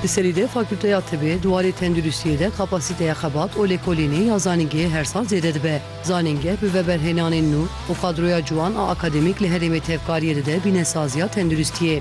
Di serî de Fakûlteya Tibê di warê tenduristiyê de kapasîteya xebat û lêkolînê ya zanîngehê her sal zêde dibe. Zanîngeh bi veberhênanên nû û qadroya ciwan a akademîk li herêmê tevkariyê dide bîne saziya tenduristiyê.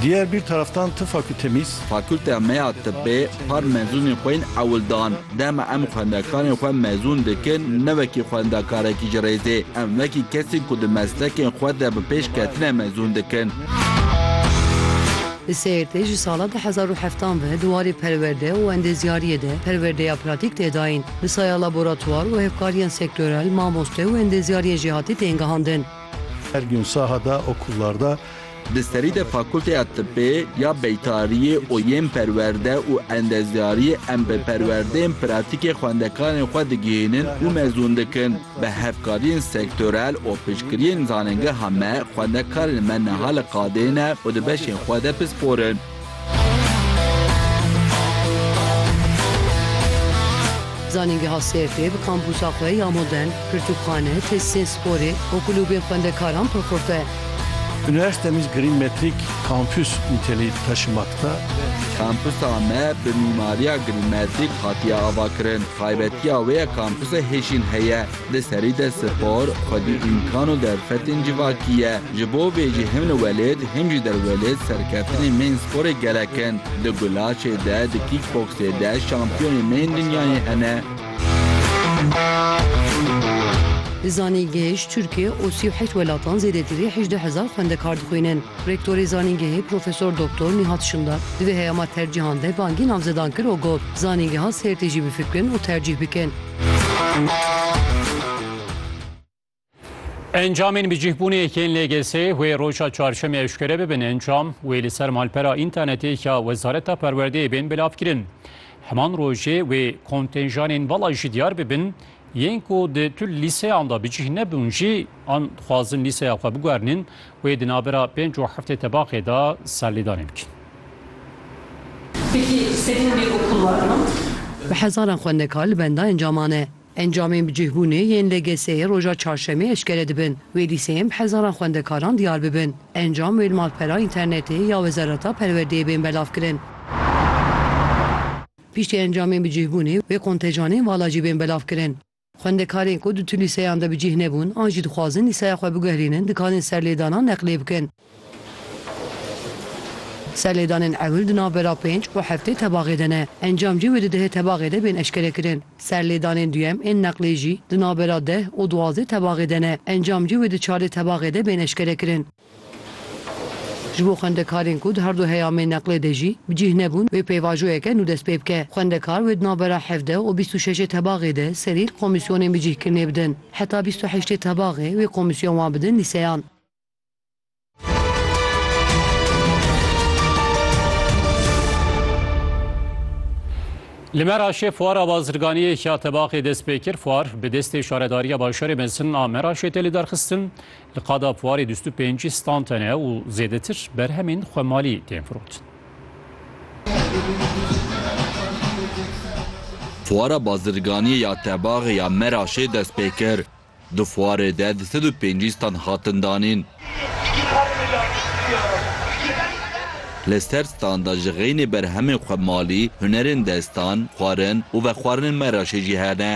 Diyer bir taraftan ti fakültemiz. Fakülteya me ya Tibê par mezunên xwe yên ewil dan. Dema em xwendekarên xwe mezûn dikin, ne wekî xwendekarekî ji rêzê, em wekî kesên ku di meslekên xwe de bi pêş ketine mezûn dikin. Li Sêrtê ji sala du hezar û heft an ve di warê perwerde û endêzyariyê de perwerdeya pratîk tê dayîn. Bi saya laboratwar û hevkariyên sektorel, mamoste û endêzyariyên jêhatî tên gihandin. Her gün sahada okullarda Di serî de Fakulteya Tibê ya Beytariyê û yên Perwerde û Endezyariyê em bi perwerdeyên pratîkê xwendekarên xwe digihînin û mezûn dikin. Bi hevkariyên sektorel û piştgiriyên zanîngeha me xwendekarên me niha li qadê ne û di beşên xwe de pispor in. Zanîngeha Sêrtê bi kampûsa xwe ya modern, pirtûkxane, tesîsên sporê û kulûbên xwendekaran pir xurt e. Üniversitemiz Green Metric Campus niteliği taşımakta. Kampusa me bi mîmariya Green Metric hatiye avakirin. Taybetiya wê ye kampusa hêjîn heye. Di serî de spor, xwedî îmkan û derfetên civakî ye. Ji bo vê jî him li welêt him jî derwelêt serkeftinên me yên sporê gelek in. Di gulaçê de, di kîkboksê de şampiyonên me yên dinyayê hene. Di zanîngehê ji Tirkiye û sî û heşt welatan zêdetî rê hejdeh hezar xwendekar dixwînin. Rektorê zanîngehê Profesor Doktor Nîhat Şimdar di vê heyama tercîhan de bangî navzedan kir û got, Zanîngeha Sêrtê jî bifikirin û tercîh bikin. Encamên bi cihbûnê yekên lêgesê wê roja çarşemê eşkere bibin encam wê li ser malpera întanetê ya Wezareta Perwerdeyê bên bilavkirin. Heman rojê wê kontenjanên vala jî diyar bibin yên ku di tu lîseyan da bi cih nebûn jî An dixwazin lîseya xwe biguherînin wê di navbera pênc û heftê tebaxê de serlêdanê bikin. Bi hezaran xwendekar li benda encaman e. Encamên bi cihbûnê yên LGS'ê roja çarşemê eşkere dibin. Wê lîseyên bi hezaran xwendekaran diyar bibin. Encam wê li malpera înternetê ya Wezareta Perwerdeyê bên belavkirin. Piştî encamên bi cihbûnê wê kontejanên vala jî bên belavkirin. Xwendekarên ku di tu lîseyan de bi cih nebûn an jî dixwazin lîseya xwe biguherînin dikarin serlêdana neqlê bikin. Serlêdanên ewil di navbera pênc û heftê tebaxê de ne. Encam jî wê di dehê tebaxê de bên eşkerekirin. Serlêdanên duyem ên neqlê jî di navbera deh û duwazdê tebaxê de ne. Encam jî wê di çardê tebaxê de bên eşkerekirin. Ji bo xwendekarên ku di herdu heyamên neqlê de jî bi cîh nebûn wê pêvajoyeke nû dest pê bike. Xwendekar wê di navbera hevdeh û bîst û şeşê tebaxê de serî li komîsyonên bicîhkirinê bidin. Heta bîst û heştê tebaxê wê komîsyon wan bidin lîseyan. Li Meraşê fuara bazirganiyê ya tebaxê dest pê kir. Fuar bi destê Şaredariya Bajarê Mezin a Meraşê tê lidarxistin. Li qada Puarê dûst û pêncî stand hene û zêdetir berhemên xwemalî tên firotin. Fuara Bazirganiyê ya Tebaxê ya Meraşê dest pê kir. Di fuarê de du sed û pêncî stand hatin danîn. Li ser standa ji xeynê berhemên xwemalî, hunerên destan, xwarin û vexwarinên Meraşê jî hene.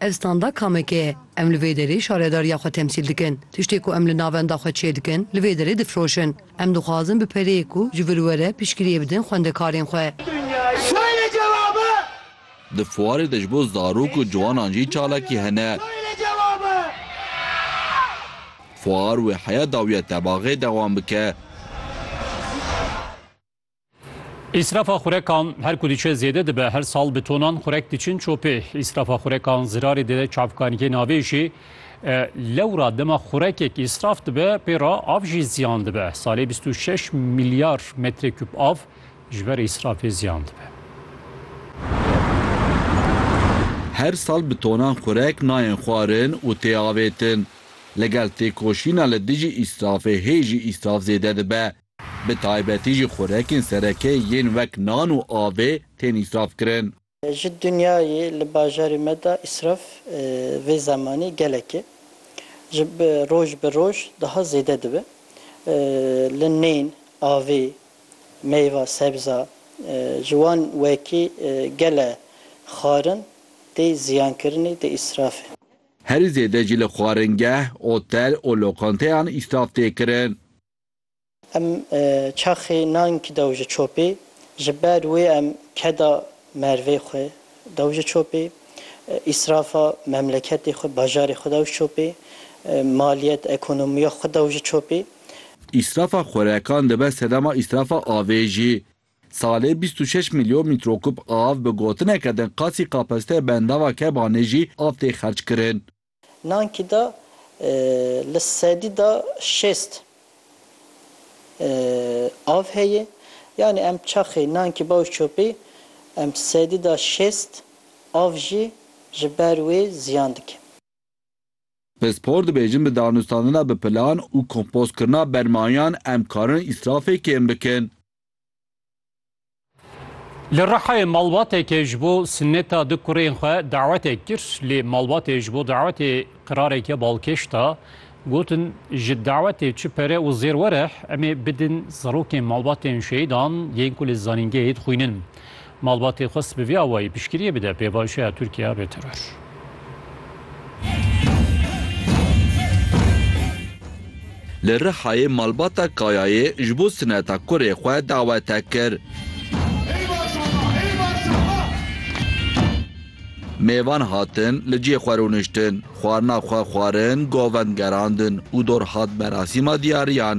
Ev standa kameke ye. Em li vê derê şaredariya xwe temsîl dikin. Tiştê ku em li navenda xwe çêdikin, li vê derê difiroşin. Em dixwazin bi pereyê ku ji vir were piştgiriyê bidin xwendekarên xwe. Di fuarê de ji bo zarok û ciwanan jî çalakî hene. Fuar wê heya dawiya tebaxê dewam bike. Îsrafa xurekan her ku diçe zêde dibe her sal bi tonan xurek diçin çopê. Îsrafa xurekan zirarê dide çavkaniyê navê jî e, lewra dema xurekek îsraf dibe pê re av jî ziyan dibe. Salê bîst û şeş milyar metrekûb av ji ber îsrafê ziyan dibe. Her sal bi tonan xurek nayên xwarin û tê avêtin. Li gel têkoşîna li dijî îsrafê hê jî îsraf zêde dibe. Bi taybetî jî xurekên sereke yên wek nan û avê tên îsrafkirin. Ji dinyayê li bajarê me de îsraf vê zemanî gelek e. Ji roj bi roj daha zêde dibe. Li nên, avê, meyva, sebza ji wan wekî gele xwarin tê ziyankirinê, tê îsrafê. Herî zêde jî li xwaringeh, otel û lokanteyan îsraf tê kirin. Em çaxê nank dew ji çopê, ji ber wê em keda mervê xwe dew ji çopê, îsrafa memleketê xwe, bajarê xwe dew ji çopê, maliyet, ekonomiya xwe dew ji çopê. Îsrafa xwerekan dibe sedema îsrafa avê jî. Salê bîst û şeş milyon mîtrokûb av bi gotineke din qasî kapasiteya bendava Kebanê jî av tê xerckirin. Nankî de li sedî de şêst av heye. Yanî em çaxê nankî bawiş çopî em sedî de şêst av jî ji ber wê ziyan dikin. Pispor dibêjin bi danûstandina bi plan û kompozkirina bermayan em karin îsrafê kêm bikin. Li Rihayê malbateke ji bo sineta du kurên xwe dawetek kir lê malbatê ji bo dawetê qirareke balkêş da. Gotin ji dawetê çi pere û zêr were em ê bidin zarokên malbatên şehîdan yên ku li zanîngehê dixwînin. Malbatê xwest bi vî awayî piştgiriyê bide pêvajoya Tirkiye rê teror. Li Rihayê malbata Kayayê ji bo sineta kurê xwe dawete kir. Mêvan hatin li cihê xwe rûniştin, xwarina xwe xwarin, govend gerandin û dor hat merasîma diyariyan.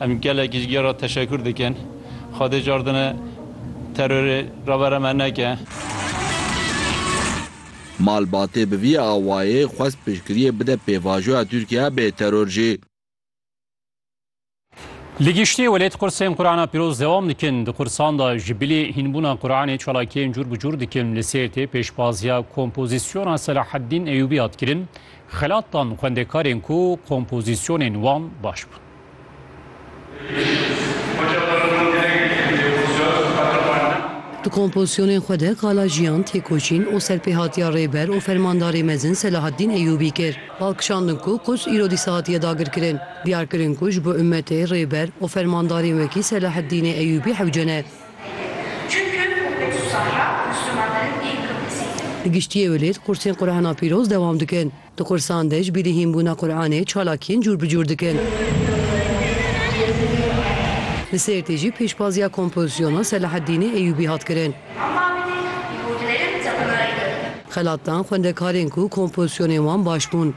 Em gelek ji ge re teşekur dikin. Xwedê cardine terorê revera me neke. Malbatê bi vî awayê xwest piştgiriyê bide pêvajoya Tirkiye bê teror jî. Li giştî welêt qursên Qurana Pîroz dewam dikin. Di qursan de ji bilî hînbûna Quranê çalakiyên cûr bi cûr dikin. Li Sêrtê pêşbaziya kompozisyona Selaheddîn Eyûbî hat kirin. Xelat dan xwendekarên ku kompozisyonên wan baş bûn. Di kompozisyonên xwe de qala jiyan, têkoşîn û serpêhatiya Rêber û Fermandarê Mezin Selahaddîn Eyyûbî kir. Bal kişandin ku Quds îro dîsa hatiye dagirkirin. Diyar kirin ku ji bo ummetê, Rêber û Fermandarên wekî Selahaddînê Eyyûbî hewce ne. Li giştî Ewilêt, qursên Qurana Pîroz dewam dikin. Di kursan de ji bîrî hînbûna Quranê çalakiyên cûr bi cûr dikin. Li Sêrtê jî pêşbaziya kompozisyona Selaheddînê Eyûbî hat kirin. Xelat dan xwendekarên ku kompozisyonên wan baş bûn.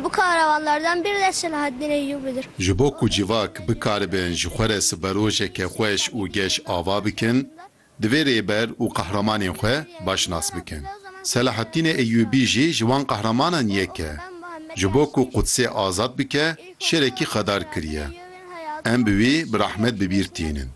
Bu kahramanlardan biri de Selaheddîn Eyûbî'dir. Ji bo ku civak bikaribin ji xwe re siberojeke xweş û geş ava bikin, Divê rêber û qehramanên xwe baş nas bikin. Selahattînê Eyyûbî jî ji wan qehramanan yek e. Ji bo ku Qudsê azad bike şêrekî xedar kiriye. Em bi wî bi rehmet bi bîr tînin.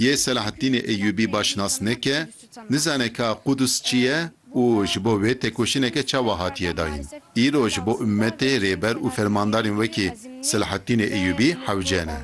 Yê Selahattînê Eyyûbî baş nas neke Nizane ka Qudus çi ye û ji bo vê têkoşîneke çawa hatiye dayîn. Îro ji bo ummetê rêber û fermandarên wekî Selahattînê Eyyûbî hewce ne.